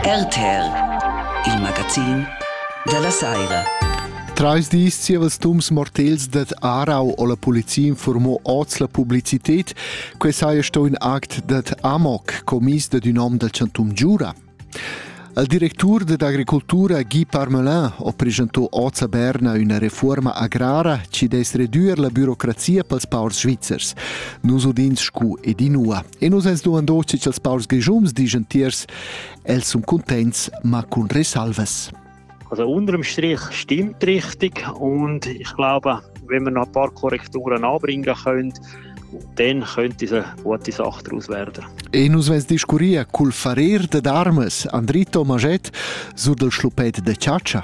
RTL, il magazin della saira. Trais dis zievels dums mortels dad Arau o la polizia informò oz la publicitet, que saja sto in act dad Amok, commis dad ün hom dal chantum Giura. Il directur dad agricultura Guy Parmelin ho presentò oz a Berna üna reforma agrara ci des redüer la bürocrazia pels paurs svizzers. Nus udins scu ed inua. E nus ens duandos che cha'ls paurs grischums dischan tiers, els sun cuntents, ma cun resalvas. Also unterm Strich stimmt richtig und ich glaube, wenn wir noch ein paar Korrekturen anbringen können, dann könnte es eine gute Sache daraus werden. E nus vens discurria cul farer dad armas Andrito Maget sur del schlupet de Ciaccia.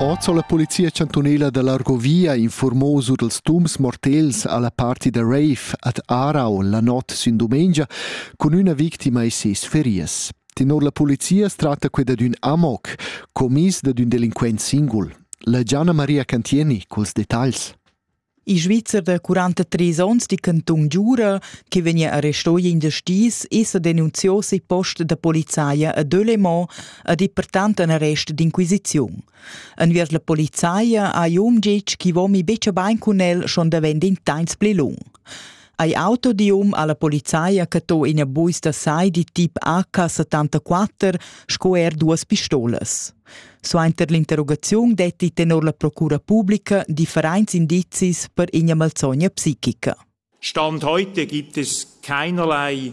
Oz ho la Polizia chantunela da l'Argovia informo sur dals tums mortels alla parti da rave ad Arau la not sün dumengia cun üna victima e ses ferias. Tenor la polizia es tratta que dad ün amoc, commis dad ün delinquent singul. La Gianna Maria Cantieni culs detagls. Il Svizzer da 43 onns di Canton Giura, che vegnia arrestò in da stis, esa denunziò sei post da polizaia a Delémont ad e pertant an arrest d'inquisiziun. Enviers la polizaia hai um ditg chi vomi becha bain cun el schon davent in tains pli lung. Ei auto di um alla polizia che to ina buista sai di tip AK74 sco er duas pistolas. Suenter l'interrogaziun detti tenor la procura pubblica differenzi indizis per ina malzogna psichica. Stand heute gibt es keinerlei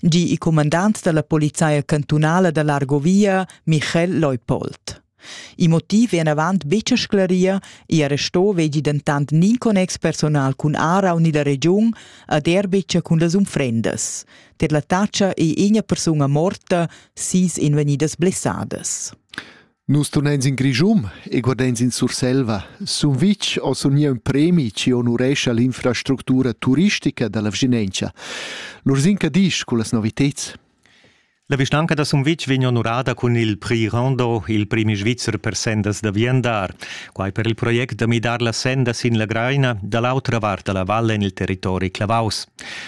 di il cumandant dalla polizia cantunala da Largovia, Michael Leupold. Il motiv è enavant betg sclarir, il arresto vegli dentant nin connex personal cun Ara u ni la regiun ad er betg cun las unfrendas. Per la taccia è ina persuna morta, sis invegnidas blessadas. Nus tuneins in Grischun e guardeins in Surselva, sun vitg o sun miu ün premi chi onurescha l'infrastructura turistica da la vschinentscha. L'Ursin che disch cullas noviteds? La vischnanca da Sumvitg vegn onurada cun il Prix Rondo, il premi svizzer per sendas da viandar. Quai per il project da midar la senda sin la Graina da l'autra vart da la valle en il territori Clavaus.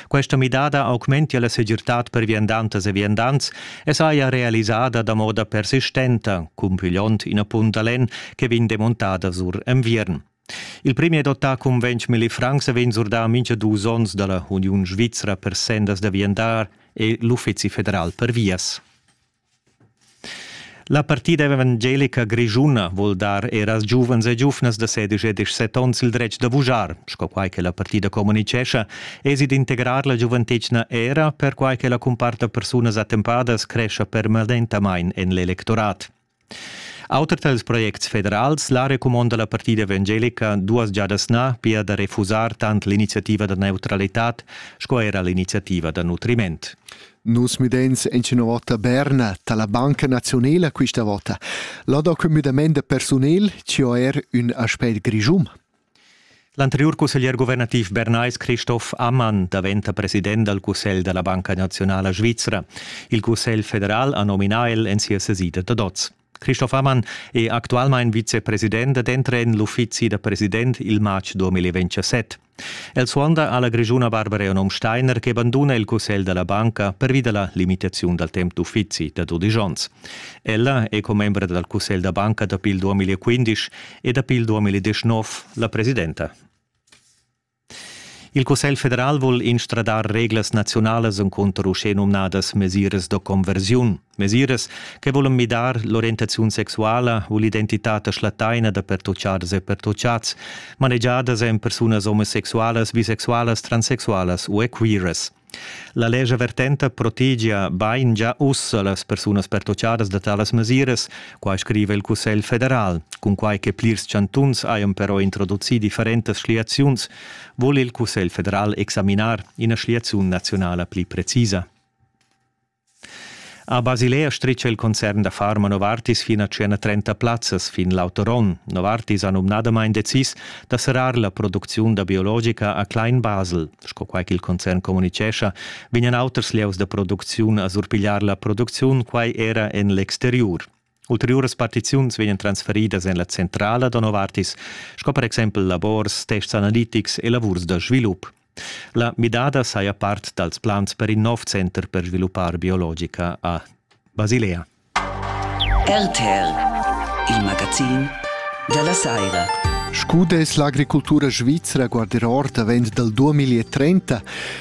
Questa midada augmentia la segirtad per viandantas e viandants e saja realisada da moda persistenta, cumpigliond ina punt da lenn che vegn demontada sur enviern. Il premier dotà cun 20 milli francs vegn surdà mincha dus ons da la Uniun Svizra per sendas da viandar e l'Uffizi federal per vias. La partida evangelica grischuna vuol dar er als giuvens e giuvnas da 16 e 17 onns il dretg da vujar, sco quai che la partida comunicescha, Esi d'integrar la giuventetgna era perquai che la cumparta persunas attempadas crescha permanentamain en l'electorat. Auter dals projects federals, la recumonda la partida evangelica duas giadas na, pia da refusar tant l'iniziativa da neutralitad sco era l'iniziativa da nutriment. Nus mideins en ina vota Berna dalla Banca Nazionala questa vota. Là da quei müdament da persunel, ci er ün aspect grischum. L'anteriur cusseglier guvernativ bernais Christoph Ammann daventa president dal Cussegl da la Banca Naziunala Svizra. Il Cussegl federal ha nominà el en sia sesida da dots. Christoph Ammann è actualmain vicepresident ed entra en l'uffizi da president il matg 2027. El suonda alla grischuna Barbara Onom Steiner che banduna il cussegl da la banca pervi da la limitaziun dal temp d'uffizi da dudisch onns. Ella è commembra dal cussegl da banca dapi il 2015 e dapi il 2019 la presidenta. Il Cussegl federal vul instradar reglas nazionalas encunter uschè numnadas mesiras da conversiun, mesiras che volan midar l'orientaziun sexuala u l'identitad schlattaina da pertutgadas e pertutgads, manegiadas en persunas omosexualas, bisexualas, transsexualas u queeras. La lescha vertenta protegia bain gia ussa las persunas pertoccadas da talas mesiras, quai scriva il Cussegl federal. Cunquai che plirs chantuns hajan però introducì differentas schliaziuns, vul il Cussegl federal examinar ina schliaziun naziunala pli precisa. A Basilea stricha il concern da far ma Novartis fin a tschena 30 plazzas fin l'auter onn. Novartis ha numnadamain decis da serrar la producziun da biologica a Klein Basel. Sco quai ch'il concern communitgescha, vegnan auters lieus da producziun a surpigliar la producziun quai era en l'exteriur. Ulteriuras partiziuns vegnan transferidas en la centrala da Novartis, sco per exempel labors, tests analitics e lavurs da svilup. La midada saja part dals plans per in nov center per sviluppar biologica a Basilea. RTL, il magazin della Saira. Scu dess l'agricultura svizra guardar or davent dal 2030?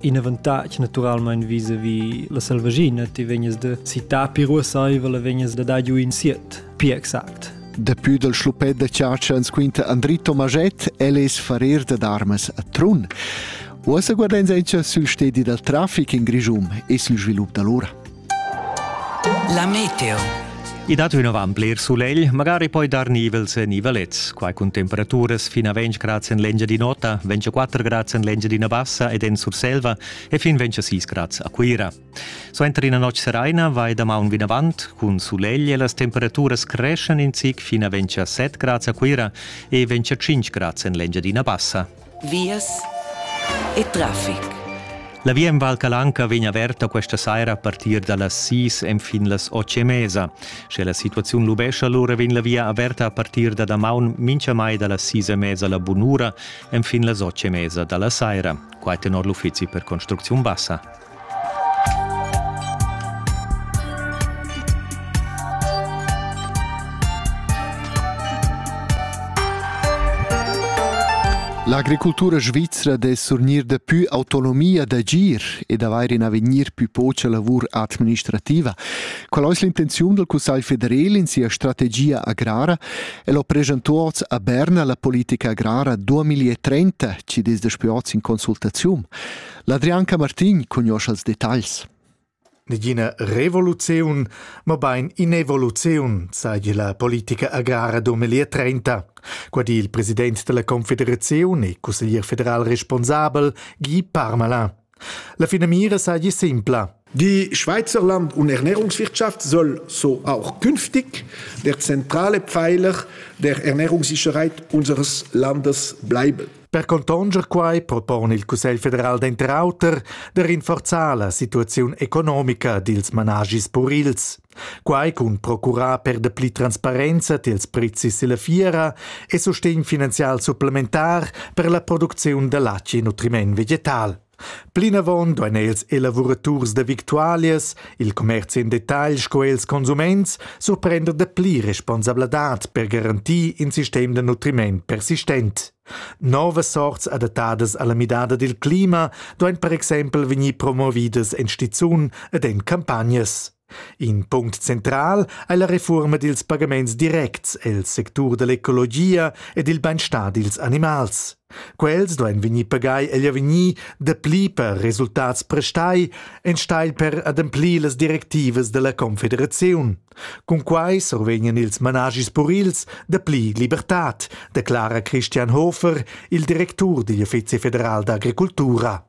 in avantatg naturalmein vis-a-vis la selvaschina ti vegnas da citar più ruassaivel e vegnas da dar giu in siet pi exact Dapü dal schluppet da chatscha ans quinta Andri Tomaget, el es farer dad armas a Trun. Uossa guardains auncha sül stedi dal trafic in Grischun e sül svilup da l'ura. La meteo. I dat ün avant bler sulegl, magari poi dar nivels e nivelets. Quai cun temperaturas fin a 20 grads en l'Engia di nota, 24 grads en l'Engia d'ina bassa ed en Surselva e fin 26 grads a Cuira. Suenter ina notg seraina vai damaun vinavant, cun sulegl e las temperaturas creschan in zic fin a 27 grads a Cuira e 25 grads en l'Engia d'ina bassa. vias e traffic. La via en Val Calanca vegn averta questa saira a partir da las sis enfin las otg e mesa. Sche la situaziun lubescha, lura vegn la via averta a partir da damaun mintgamai da las sis e mesa la bunura enfin las otg e mesa da la saira. Quai tenor l'uffizi per construcziun bassa. L'agricultura svizra de surgnir de più autonomia d'agir e d'avair in avegnir più poca lavur administrativa. Qual è l'intenzione del Consiglio federale in sia strategia agrara e lo presentuoz a Berna la politica agrara 2030, ci desde in consultazium. L'Adrian Camartin cugnoscha els detagls. Negina revoluziun, mabain inevoluziun, seigi la politica agrara 2030. Qua di il president della Confederazione e cusseglier federal responsabel Guy Parmalin. La finamira seigi simpla, Die Schweizerland und Ernährungswirtschaft soll so auch künftig der zentrale Pfeiler der Ernährungssicherheit unseres Landes bleiben. Per contonger quai propon il Cussegl federal denter auter de rinforzar la situaziun economica dils managis purils. Quai cun procurar per de pli transparenza tiels prezis e la fiera e sustegn finanzial supplementar per la producziun de laci e nutriment vegetal. Plinavon duein els elavuraturs da victualias, il commerci en detagl sco els consuments, surprender de pli responsabladad per garantir in sistem de nutriment persistent. Novas sorts adattadas alla midada dil clima duein per exempel vegnir promovidas en stizun ed en campagnas. In punct central ei la refuorma dils pagaments directs el sectur dall'ecologia ed il beinstar dils animals. Quels duein vegnir pagai egl avegnir dapli per resultats prestai enstagl per ademplir las directivas dalla confederaziun. Cun quai survegnan ils managis purils dapli libertad, declara Christian Hofer, il directur digl Uffizi federal d'agricultura.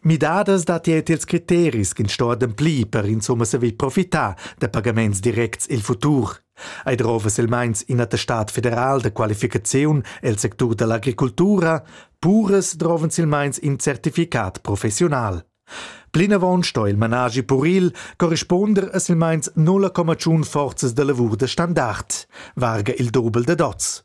Midadas dat er ils criteris ch'ins sto ademplir per insumma saver profitar da pagaments directs il futur. Ei drova silmeins ina testat federal da qualificaziun el sectur dall'agricultura, puras drovan silmeins in certificat professional. Plinavon sto il managi puril corrisponder a silmeins 0,1 forzas da lavur de standard, varga il dobel de dots.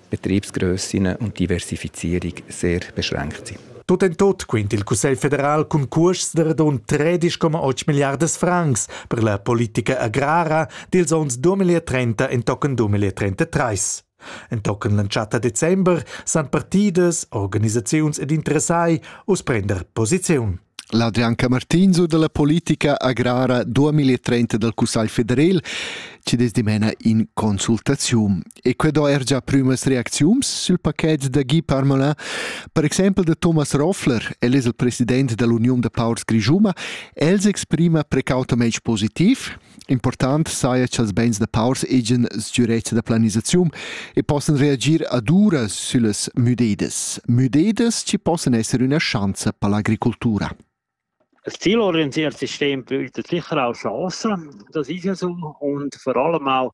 Betriebsgrössen und Diversifizierung sehr beschränkt sind. Tut en tut quint il Cussegl federal cun custs de radund 13,8 milliardas francs per la politica agrara dils onns 2030 entochen 2033. Entochen l'entschatta december san partidas, organisaziuns ed interessai uss prender posiziun. L'Adrian Camartinzo dalla politica agrara 2030 dal Cussagl federal ci des dimena in consultaziun. E que do er già prümas reacziuns sul paquet da Guy Parmelin. Per exempel de Thomas Roffler, el es il president dall'Union de Paurs Grisuma, els exprima precautemente positiv Important saja cha'ls bains da paurs hegian sgürezza da planisaziun e possan reagir ad uras süllas müdedas. Müdedas chi possan esser üna schanza per l'agricultura. Das zielorientiertes System bietet sicher auch Chancen, das ist ja so, und vor allem auch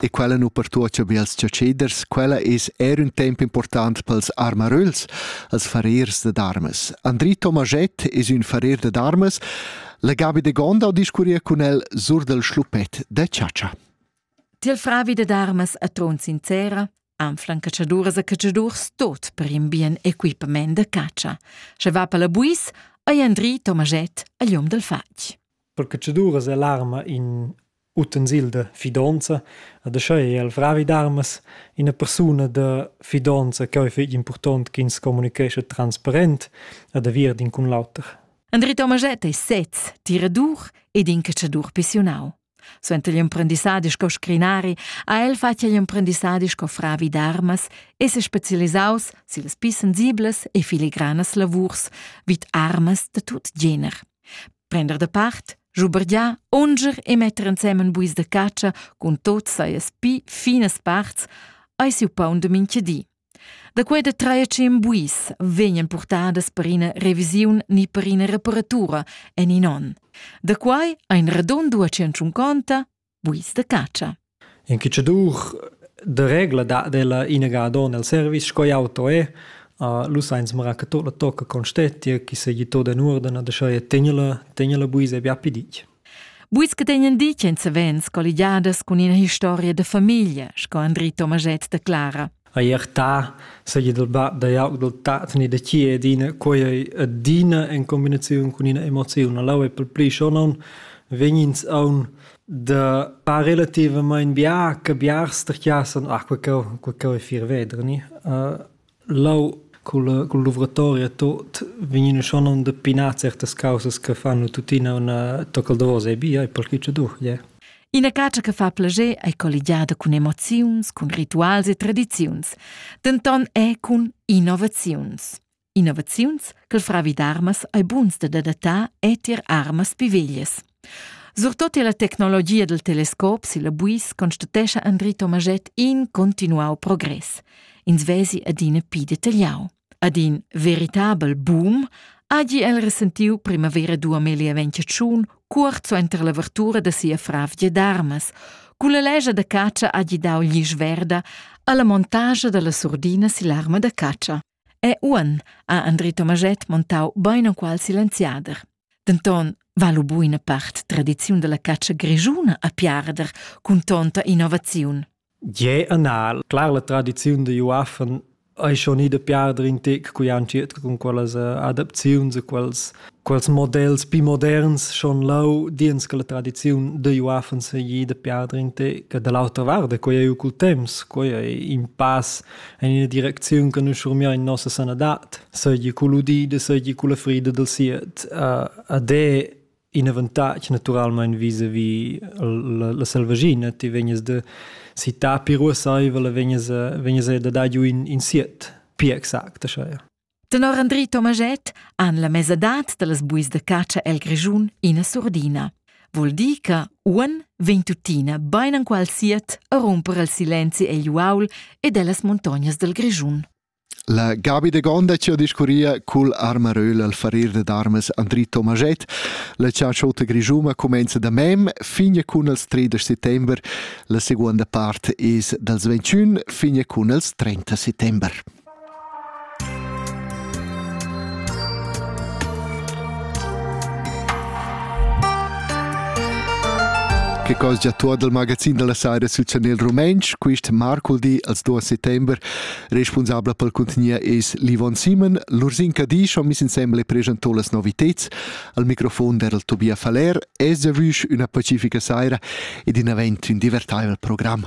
e quella nu pertuocha be als chatscheders, quella es eir ün temp important pels armaröls, als farriers dad armas. Andri Tomaschett es ün farrier dad armas. La Gabi de Gondau discurria cun el sur dal schluppet da chatscha. Til fravi dad armas a tron sincera, anflan catschaduras e catschadurs tot per in bien equipament da catscha. Sche va per la buis, ei Andri Tomaget a lium dal fatg. Per catschaduras è l'arma in utensil de fidanza e da schei el fravi d'armas ina persuna de fidanza che è fetg important che ins comunicesce transparent e da vir d'in cun l'auter. Andri Tomaget ei sez tiradur ed in catschadur pissiunau. Suenter igl emprendissadi sco scrinari ha el fatg igl emprendissadi sco fravi d'armas e se specialisaus sillas pli sensiblas e filigranas lavurs vid armas da tut gener. Prender de part, schubergiar, unger e metter ensemen buis de catscha cun tot saies pi finas parts, ei siu paun de minchedi. Da quei da trer tschien buis vegnan purtadas per ina revisiun ni per ina reparatura en in onn. Da quai ein radond ua tschunconta buis da catscha. In cicciadur de regla da della inaga don el service sco auto è uh, lu sainz mara che tot la tocca con stettia chi se gitto den uordena de scheie tegnela tegnela buis e bia pidic Buis che tegnan di ch'en savens colligiadas cun ina historia da famiglia, sco Andri Tomaget de Clara. A iertà seigi dal bab da jauc dal tat ni da chi è dina quei ei adina en combinaziun cun ina emoziun. Allau è pel pli schonon vegnins aun da par relativamain bia che biars sterchiassan ah quei cheu quei cheu è fir vedr ni. Uh, Leu culla cul luvratoria e tot vegnina schon onda pinar certas caussas che fanno tuttina üna tocca al davos e bia e perque cha duch gie. Ina catscha che fa plascher ei colligiada cun emoziuns, cun rituals e tradiziuns, denton è cun innovaziuns. Innovaziuns che il fravi d'armas ei buns da datar e tier armas pi veglias. Surtut illa tecnologia dal telescop silla buis constatescha Andri Tomaschett in continuau progress. Ins vesi adina pi detagliau. Ad in veritabel boom hagi el resentiu primavera 2021 cuort suenter l'avertura da sia fravgia d'armas. Cun la legia da catscha hagi dau glisch verda alla montagia dalla surdina sill'arma da catscha. E uonn ha Andri Tomaschett montau beinenqual silenziader. Denton va lu buina part tradiziun dalla catscha grischuna a piarder cun tonta innovaziun. Gie anal, clar la tradiziun da Juaffen ei schon ida piarder in tec cui han circa cun quellas eh, adaptaziuns e quels, quels models pi moderns schon lau diens che la tradiziun de Juaffen se ida piarder in tec. Da l'autra vart, quei ei cul temps, quei ei in pass En ina direcziun che nus schurmiein nossa sanadad, seigi cugl udida, seigi culla frida dil siet. Uh, ed è in avantatg naturalmein vis-a-vis la, la selvaschina. Ti vegnes de città piruasaivel e vegnes, vegnes da dar giu in, in siet, pia exact, așa. Tenor Andri Tomaschett han la mesadad da las buis da catscha el Grischun ina surdina. Vul dir che uan vegn tuttina bain anqual siat a rumper al silenzi egl uaul ed ellas montognas dal Grischun. La Gabi de Gonda ci ha discurria cul armaröl al farir de darmes Andri Tomaschett. La ciaciota grischuma comenza da mem fin cun els 3 de settember. La seconda part es dals 21 fin cun els 30 settember. che cos già tuot dal magazin da la Saira sül chanel rumentsch. Quist marculdi als 2 settember responsabla pel contenier es l'Yvonne Simon. L'Ursinka Disch ho miss insembel e preschantò las noviteds. Al microfon der il Tobia Faller. Es giavüsch üna pacifica saira ed in avent ün divertaivel program.